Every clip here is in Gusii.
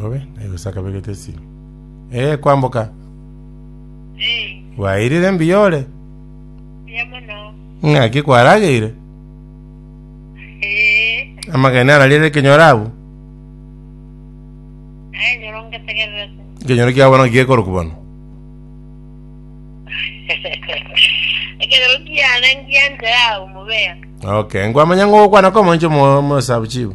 Obe naigose akabegete esiro. Eh, kwamboka. Eh, Bwairire mbuya ore. mbuya mono. Ng'aki kwarageire. Eh, Amagene ararire ekenyoro abu. aye nyoro ngetegerera se. Ekenyoro kiabo bono gekoroku bono. Ekero kiana ngianze yao mubeya. Okay, nkwamanya ng'ogokwana kwa omonche mo- mosabu chibu.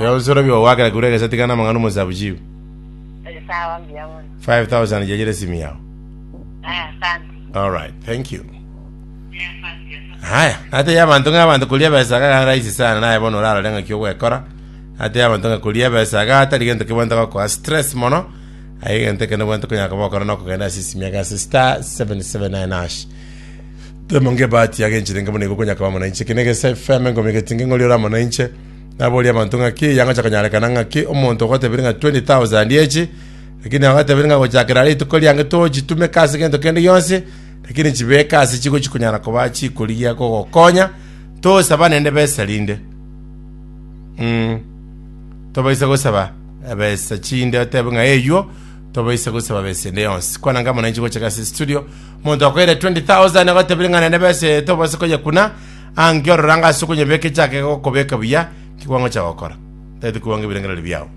Eobisoro biogo gwakera kegure egesati kane amang'ana omosabichibu, 5000 chiachire esimi yao. Alright, thank you. Haya, nateye abanto ng'a abanto koria ebesa iga gari rahisi sana naye bono orarore ng'aki ogwekora. Nateye abanto ng'a koria ebesa iga tari gento kebwente gokoa stress mono. Aye egento ekende bwente okonyara koba okore nokogenda ase esimi ase star 779 hash. Twemo ngebati agencherenge buna igo konyakaba amo nainche. Eke negesa efemo enkomo egati ngeng'ori ore amo nainche. Naboria abanto ng'a ki eyangocha konyarekana ng'a ki omonto ogoteberia ng'a 20,000 echi, lakini agoteberia ng'a gochakera rituko riange tochitumeka ase gento kende gionsi, lakini chibeke ase chigo chikonyara koba chikorigia gogokonya, tosaba nende besa rinde. Mm. Tobaisa gosaba ebesa chinde otebe ng'a eyuo, tobaisa gosaba besa ende yonsi. Kwananga amo nainche gochaka ase studio, Omonto okoira 20,000 agoteberia ng'a nende besa eye tobose koyekuna, aa nki orora ng'a ase okonyebeka echake egokobeka buya, ki kwangocha gokora? Tari tikobanga ebirengererio biao.